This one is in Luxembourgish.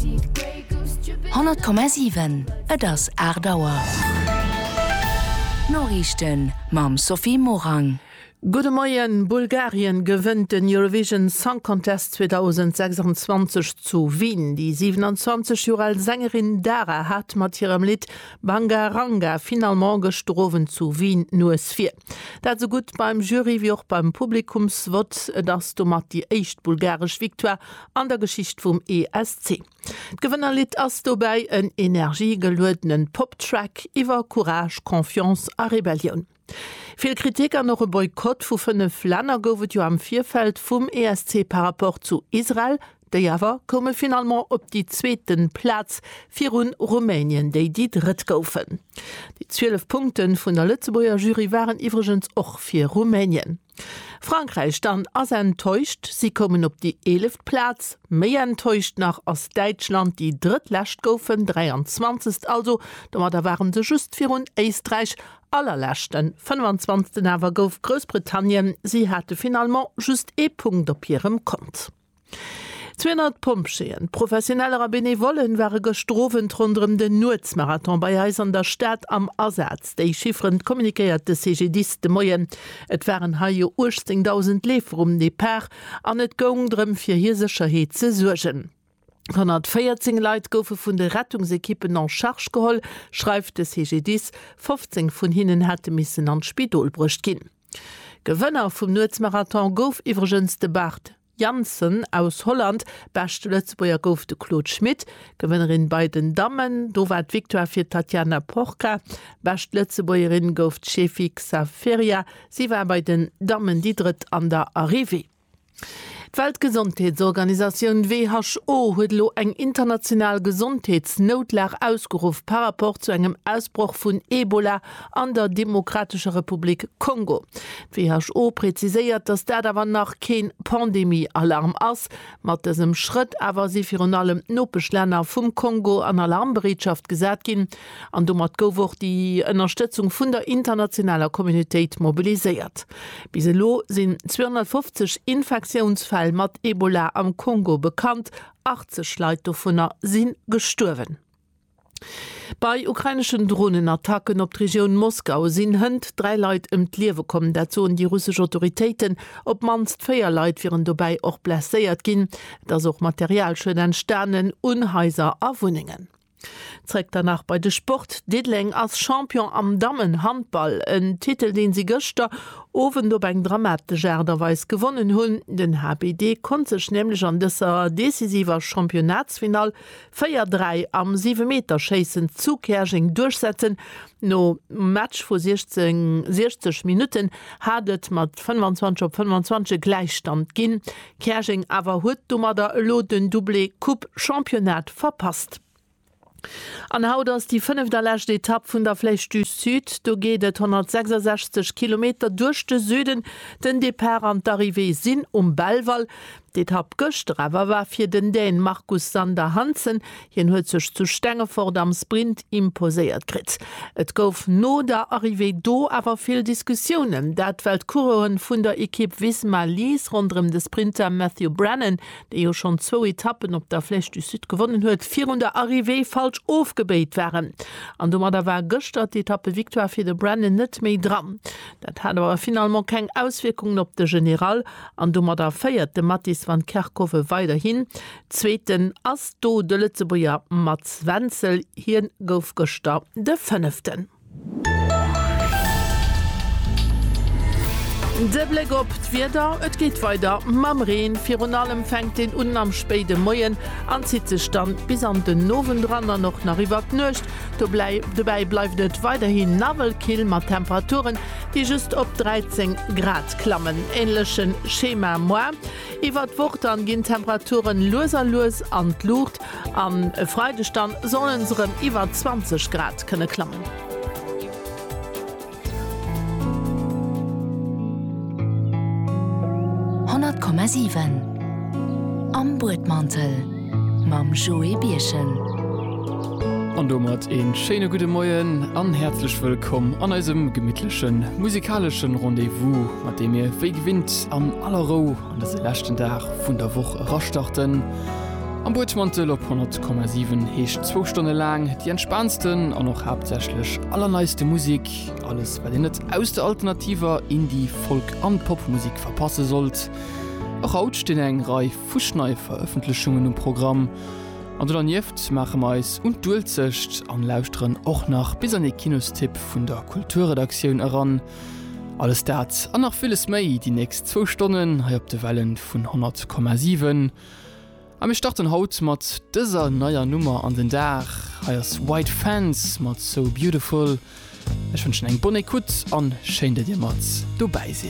100,7 Et ass 8 Auer. D'Noriichten mam Sophie Morang. Gudde Moien, Bulgarien gewënnt den Eurovision Song Contest 2026 zu Wien. Déi 27 Joer al Sängerin Dara hat mat hirem Lidd Banga Ranga finalement gëschter Owend zu Wien d'Nues vir. Dat esou gutt beim Jury wéi och beim Publikumsvott. Et ass domat déi éischt bulgaresch Victoire an der Geschicht vum ESC. D'Gewënnerlidd ass dobäi en energiegeluedenen Pop-Track iwwer Courage, Confiance a Rebellioun. Vill Kritik an och e Boykott vu 5 Länner gouf et jo am Virfeld vum ESC par rapport zu Israel. Déi awer koume finalement op déi zweete Plaz viru Rumänien, déi déi drëtt goufen. Déi 12 Punkte vun der Lëtzebuerger Jury waren iwwregens och fir Rumänien. Frankräich dann ass enttäuscht, si koumen op déi eeleft Plaz. Méi enttäuscht nach ass Däitschland, déi drëttlescht goufen, 23. Also domatter ware se just virun Éisträich, allerleschten, 25. Awer gouf Groussbritannien, si hate finalement just ee Punkt op hirem Kont. 200 Pompjeeën, Professioneller a Benevollen ware gëschter Owend ronderëm den Nuetsmarathon bei eis an der Stad am Asaz. Déi Chifferen communiquéiert de CGDIS de Moien. Et waren hei jo 18.000 Leefer um Depart an et goung drëm fir hir Sécherheet ze suergen. 114 Leit goufe vun de Rettungsekippen en charge geholl, schreift de CGDIS. 15 vun hinnen hätte missen an d'Spidol bruecht ginn. Gewënner vum Nuetsmarathon gouf iwwregens de Bart Jansen aus Holland. Beschte Lëtzebuerger gouf de Claude Schmit. Gewënnerin bei den Dammen, do war d'Victoire fir d'Tatiana Porca. Bescht Lëtzebuergerin gouf d'Chefik Saferia, si war bei den Dammen déi Drëtt an der Arrivée. D'Weltgesondheetsorganisatioun who huet elo eng international Gesondheetsnoutlag ausgeruff par rapport zu engem Ausbroch vun Ebola an der Demokratescher Republik Kongo. D'WHO präziséiert, datt dat awer nach kee Pandemie-Alarm ass. Mat dësem Schrëtt awer si virun allem d'Nopeschlänner vum Kongo an Alarmbereetschaft gesat ginn an domat gouf och déi Ënnerstëtzung vun der internationaler Communautéit mobiliséiert. Bis elo sinn 250 Infektiounsfäll mat Ebola am Kongo bekannt, 80 Leit dovunner si gestuerwen. Bei ukraineschen Dronenattacken op d'Regioun Moskau sinn hënt 3 Leit ëm d'Liewe komm, dat soen déi russesch Autoritéiten. Op d'mannst 4 Leit wieren dobäi och blesséiert ginn. Et ass och Materialschued entstanen un Haiser a Wunnengen. Zréck dann nach bei de Sport, Diddeleng ass Champion am Dammenhandball, en Titel deen si gëschter Owend op eng dramatesch Aart a Weis gewonnen hunn. Den HBD konnt sech nämlech an dëser decisiver Championnatsfinall 4, 3 am Siwemeterschéissen zu Käerjeng duerchsetzen. Nom Match vu 60 Minutten hat et mat 25 op 25 e Gläichstand ginn. Käerjeng awer huet domadder elo den Doublé Coupe-Championnat verpasst. An haut ass déi fënneft a lescht Etapp vun der Flèche du Sud. Do geet et 166 Kilometer duerch de Süden. Den Depart an d'Arrivée sinn um Belval. D'Etapp gëschter awer war fir den Dän Marcus Sander Hansen Hien huet sech zu Stengefort am Sprint imposéiert kritt. Et gouf no der Arrivée do awer vill Diskussiounen, dat well d'Coureuren vun der Ekipp Visma Lease ronderëm de Sprinter Matthew Brennan, dee jo schonn zwou Etappen op der Flèche du Sud gewonnen huet, virun der Arrivée falsch ofgebéit waren. An domadder war gëschter d'Etappe-Victoire fir de Brennan net méi dran. Dat hat awer finalement keng Auswierkungen op de General an domadder féiert de Mattis van Kerckhove weiderhin. Zweeten ass do de Lëtzebuerger Mats Wenzel, hien gouf gëschter de Fënneften. De Bléck op d'Wieder, et geet weider mam Reen, virun allem fänkt deen un am spéide Moien an zitt sech dann bis an den Owend ran an och nach iwwert d'Nuecht. Dobäi bleift et weiderhi nawell kill mat Temperaturen déi just op 13 Grad klammen. Änlechen Schema moar. Iwwert d'Woch dann ginn d'Temperaturen lues a lues an d'Luucht an e Freideg dann sollen se rem iwwert 20 Grad kënne klammen. Am Buedmantel mam Joé Birchen. An domat een schéine gudde Moien an häerzlech wëllkomm an eisem gemittlechen musikaleschen Rendez-vous. mat deem mir wéi gewinnt an aller Rou an dëse leschten Dag vun der Woch erastarten. Am Buedmantel op 100,7 heescht zwou Stonne laang déi entspaansten an och haaptsächlech allerneiste Musek, alles wat een net aus der alternativer Indie-, Folk an Popmusek verpasse sollt. Och haut stinn eng Rei fusch neie Verëffentlechungen um Programm an do dernieft maache mer eis un d'Uelzecht an lauschteren och nach bis an ee Kinostipp vun der Kulturredaktioun eran. Alles dat an nach villes méi déi nächst zwou Stonnen hei op de Wellen vun 100,7. A mir starten haut mat dëser neier Nummer an den Dag. Hei ass White Fence mat So Beautiful. Ech wënschen eng bonne Ecoute an schéin dat dir mat dobäi sidd.